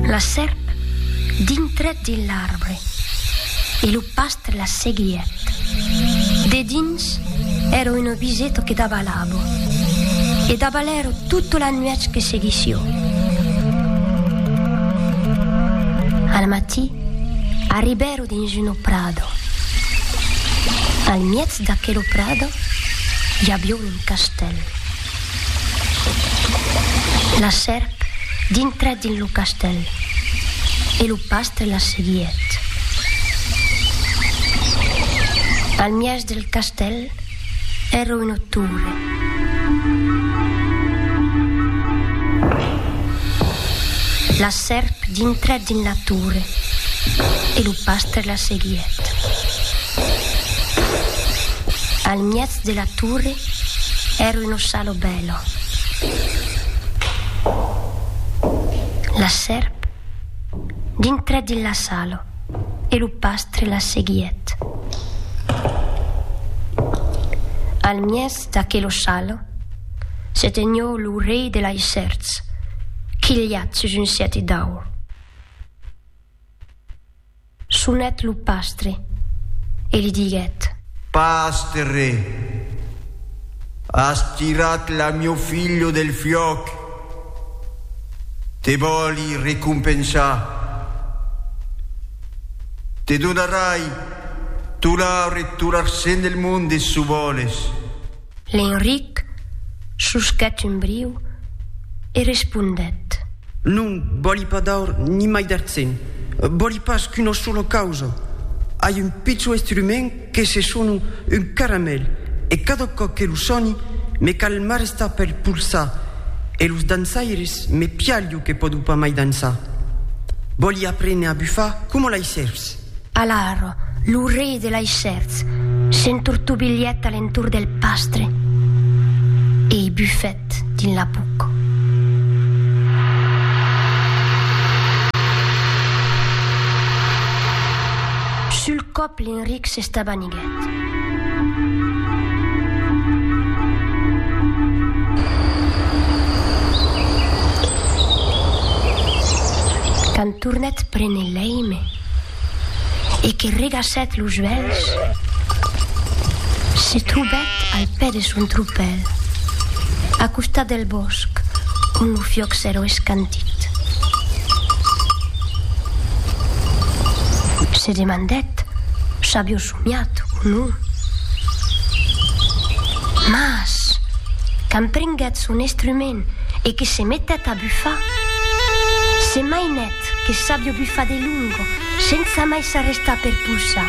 La sèrp dintrèt dins l'arbre e lo pastre la seguièt. Dedins èra un obiseto que davalavo e davalèro tota la nuèch que seguissió. Al matí arribèro dins uno prado. Al miètz d'aquelo prado i avió un castèl. La sèrp dintrèt dins lo castèl e lo pastre la seguièt. Al mièg del castèl èra una torre. La sèrp dintrèt dins la torre e lo pastre la seguièt. Al mièg De la Tourre ère un ossalo bèlo. La sèrp dintrèt dins l'assalo e lo pastre la seguièt. Al mièg d'aquel ossalo se tenió lo rei de lei sèrps quilhat sus un sièti d'aur. Sonèt lo pastre e li diguèt. Pastre, as tirat la mieu filho del fiòc, te vòli recompensar. Te donarai tolar e tolarcent del monde, çò vòles. L'Enric susquèt un briu e respondèt. Non vòli pas d'aur ni mai d'artzen, vòli pas qu'una sola causa. Ai un pichon estrument que se sona un caramèl e cada còp que lo soni me cal m'arrestar pel polsar e los dançaires me pialho que pòdo pas mai dançar. Vòli aprene a bufar coma lei sèrps. Alara, lo rei de Laissèrts s'entortobilhèt a l'entorn del pastre e i bufèt dins la buc. Sul còp l'Enric s'estabaniguèt. Quand tornèt prene l'èime e que regassèt los uèlhs, se trobèt al pè de son tropèl, a costat del bòsc ont lo fiòc s'èra escantit. Se demandèt s'avió somiat o non. Mas, quand prenguèt son estrument e que se metèt a bufar, se mainèt que s'avió bufat de longo sensa mai s'arrestar per pousar.